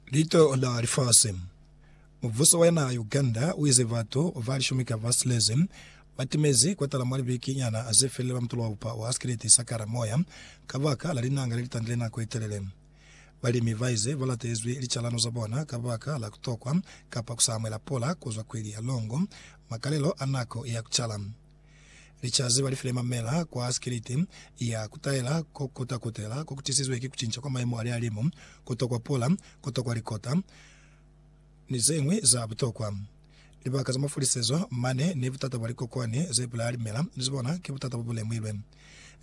Litola lifasi. Mubuso wa naha ya Uganda uize batu ba lishumi ka ba silezi batimezi kotala mwa libeki nyana zefilile ba mutolo wa bupa wa Askileti Sakara moya kabaka la linanga lelitandile nako yetelele. Balimi baize balatezwi licalano za bona kabaka la kutokwa kapa kusa amuela pula kuzwa kweli ya Longo, makalelo a nako ya kucala. Licazi balifile mamela kwa sikiliti ya kutaela ko kota kutela ko kutisizwe ki kucinca kwa maemo a lihalimu, kutwa kwa pula, kutwa kwa likota, ni zeñwi za butokwa. Libaka za mafulisezo mane ni butata bwa likokwane ze pula limela ni zibona ki butata bobulemuilwe.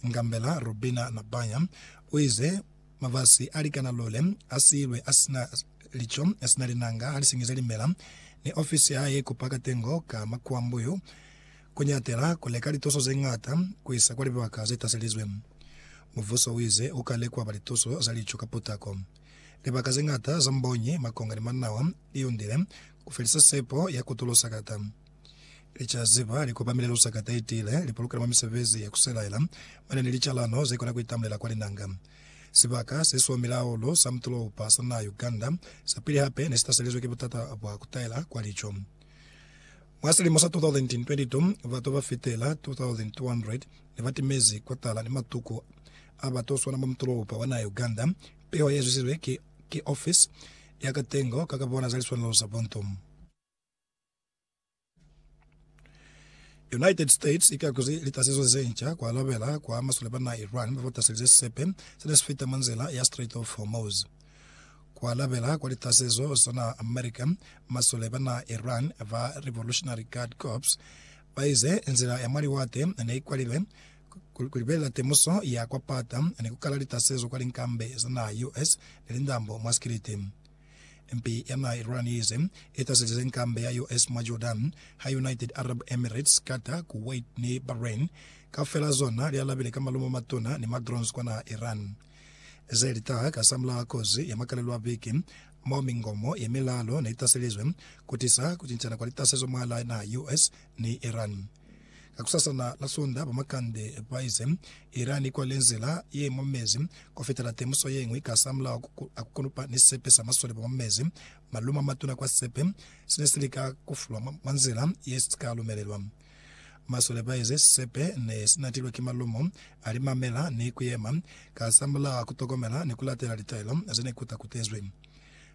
Ngambela Robina Nabanya uize, Mabasi alikana lule asiilwe asina lico, asina linanga, halisingize limela, ni ofisi yahae ikupa katengo ka makuambuyu. ku ñatela ku leka lituso ze ñata ku isa kwa libaka ze taselizwe. Mubuso u ize u ka lekwa ba lituso za lico ka putako. Libaka ze ñata za mbonyi, makonga ni manawa li yundile ku felisa sepo ya ku tulo sakata. Licaziba li kopamile lu sakata i tiile, li pulukela mwa misebezi ya ku selaela mane ni licalano ze kona ku itamulela kwa linanga. Sibaka se siomile hahulu sa mutulo-upa sa naha Uganda sa pili hape ne si taselizwe ki butata bwa ku taela kwa lico. Mwa silimo sa 2022, batu ba fitela 2,200 ne ba timezi kotala ni matuku a batu swana mwa mutolopa wa naha ya Uganda. Piho ye zwizizwe ki, ki ofisi ya katengo ka ka bona za liswanelo za buntu. United States ikakuzi litasezo ze nca ku alabela kwa masole ba naha Iran ba ba taselize sisepe se ne si fita mwa nzila ya Strait of Hormuz. Ku alabela kwa litasezo zona America, masole ba naha Iran ba Revolutionary Guard Corps ba ize nzila ya mwa liwate ne i kwalilwe ku libelela temuso ya kwa pata ni ku kala litasezo kwa linkambe za naha US ni lindambo mwa sikiliti. Mpi ya naha Iran ye ize i taselize nkambe ya US mwa Jordan, ha United Arab Emirates, Qatar, Kuwait ni Bahrain kaufela zona li alabile ka malumo a matuna ni ma drones kwa naha Iran. Ze li taha ka za mulaha kozi ya makalelo a biki, mo mingomo ye milalo ne i taselizwe ku tisa ku cincana kwa litasezo mwahalaa naha ya US ni Iran. Kakusasana la Sunda, ba makande ba ize Iran i kwale nzila ye mwa mezi ku fitela temuso ye ñwi ka za mulao a ku konopa ni sisepe sa masole ba mwa mezi, malumo a matuna kwa sisepe se ne si lika ku fulwa mwa nzila ye si ka lumelelwa. Masole baezi sisepe nesinatilwe ki malumo, alimamela ni kuyema kasamulaha kutokomela ni kulatela litaelo zenekutakutezwi.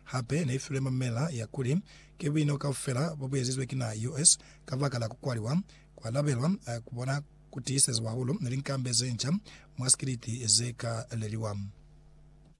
Hape neifilwe mamela ya kuli ki buino kaufela bobuezizwe ki naha US kabakala kukwaliwa kwalabelwa kubona kutiisezwa hahulu linkambe zenca mwa sikiliti zeka leliwa.